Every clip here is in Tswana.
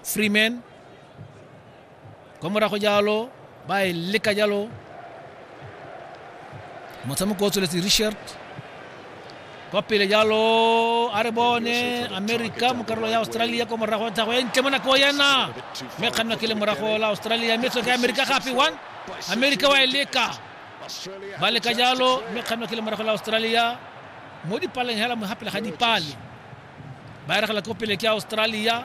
freeman kwa morago jalo ba e leka jalo motshameko o tsweletse richard kwa pele jalo a re bone america mo karolo ya australia kwa morago wa tlhago e ntle mo nako yena mme kgannwa ke le morago la australia mme tswe ka america gape one america wa e leka ba leka jalo mme kgannwa ke le morago la australia mo dipaleng hela mo hapela ga dipale ba eregela ko pele ke australia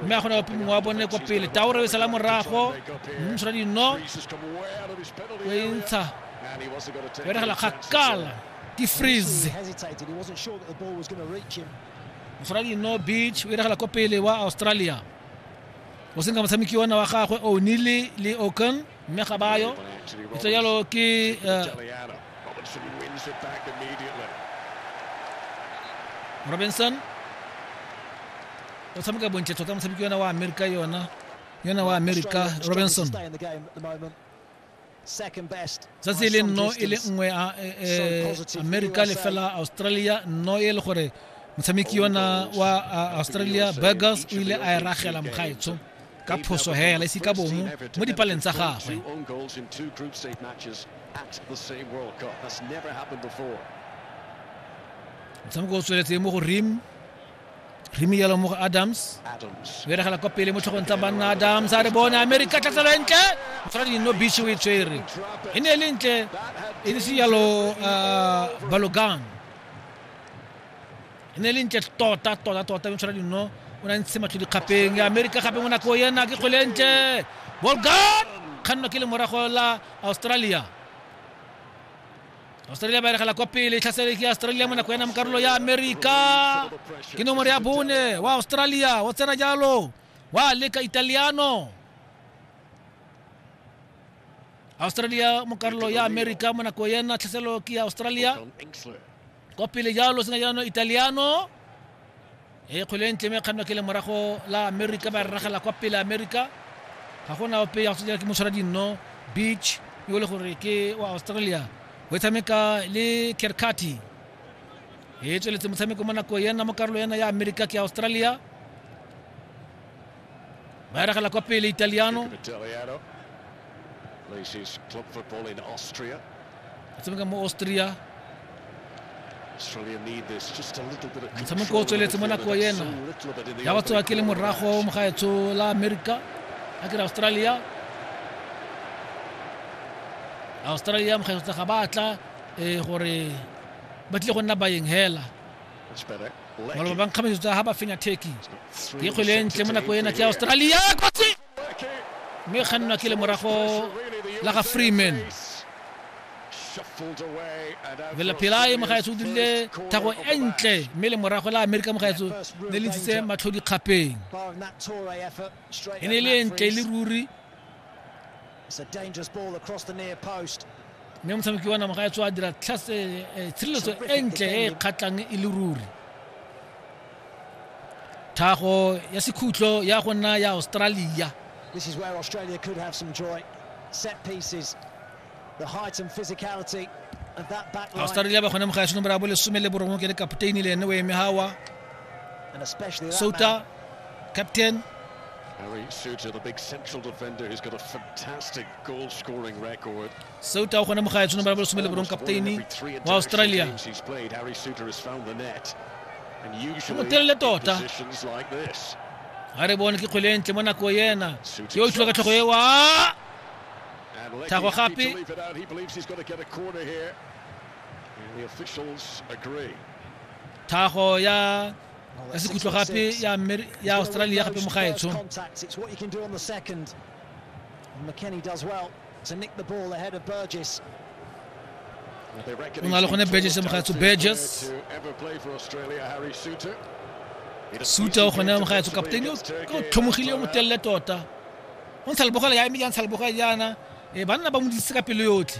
mme a kgona ope mongwe wa bone ko pele taore e sala morago mmusora dino o e ntsha o eregela kgakala ke freeze mosora dino beach o eregela ko pele wa australia o senka motshameki ona wa gagwe o nile le okan mme ga bayo ntse jalo ke eh, robinson o tshameka bontle tota motshameki yona wa amerika yona yona wa amerika robinson tsatsi e le nno e le nngwe eh, eh, amerika le fela australia nno e le gore motshameki yona wa australia burgers o ile a e ragela mogaetsho ka phoso hela ise ka bomo mo dipaleng tsa gagwe motshameko o tsweletse mo go rim rim yalo mo go adams o eregela kwa pele mo tlhogong tsa banna adams a re bone amerika tlatselo e ntle tshwana dino beach o e tshwere e ne e le ntle e ne se yalo uh, balogang e ne e le ntle tota tota tota yone tshwara dino o ne a ntshe matlho dikgapeng ya amerika gape mo nako ena ke kgwele ntle bolgan kganno ke le morago la australia australia ba eregela kwa pele tlhasele ke australia mo nako ena mo karolo ya amerika ke nomoro ya bone wa australia o tsena jalo wa leka italiano australia mo karolo ya amerika mo nako ena tlhaselo ke ya australia kwa pele jalo sena jaanong italiano e kgwele e ntle me kganwa ke le morago la america ba rragela kwa pele america ga gona ope ya go tsejela ke motshwara dinno beach yo le gore ke wa australia o e tshameka le kerkati e tsweletse motshameko mo nako yena mo karolo yena ya america ke australia Vai dalla coppia l'italiano. Plays his club football in Austria. Atsumikamo Austria. Australia need this just a little bit of control. Motshameko o tsweletse mo nako ena. Ya batho a ke le morago mo gaetsho la America. A ke Australia. Australia mo gaetsho ga batla eh gore ba tle go nna baeng hela. maloba ba nkgametso tsa ga ba fenya turkey ke kgwele e ntle mo nako ena ke australia kotsi mme kgannwa ke le morago la ga freeman velapelae mogaetso o dirile thago e ntle mme le morago la amerika mogaetso ne le ntshitse matlho dikgapeng e ne e le e ntle e le ruri mme motshameki wa namaga ya tswa a dira eh, eh, tshireletso e ntle e e kgatlhang e le ruri thago ya sekhutlo ya go nna ya australia This is where Australia could have some joy. Set pieces, the height and physicality of that back line. Australia ba gone mo ga ya nomoro ya bo lesome le borongwe ke le kapteini le ene o eme hawa And especially that Souttar, man. captain. Harry Souttar, the big central defender who's got a fantastic goal scoring record. Souttar o kgona mogae tshone ba bolesome le borong kapteine wa Australia. He's played, Harry Souttar has found the net. And usually in positions like this. ga re bone ke kgwele e ntle mo nako ena yo o tlhile ka tlhogo ewa thago gape The officials agree. tlhago ya ka sekhutlo gape ya ya australia gape mo gaetsho o na le gone burgess mo gaetsho burgess suta o gone mo gaetsho kaptene o tlhomogile o motelele tota go ntsha lebogela ya eme ya ntsha lebogela jaana e banna ba mo disitse ka pelo yotlhe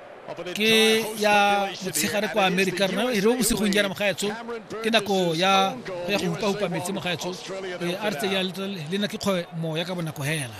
ke ya motshegare kwa america rena e re o bosigong jaana mogaetsho ke nako ya ya go upa-upa metsi mogaetsho e a re tse ya le na ke kgwe moya ka bonako hela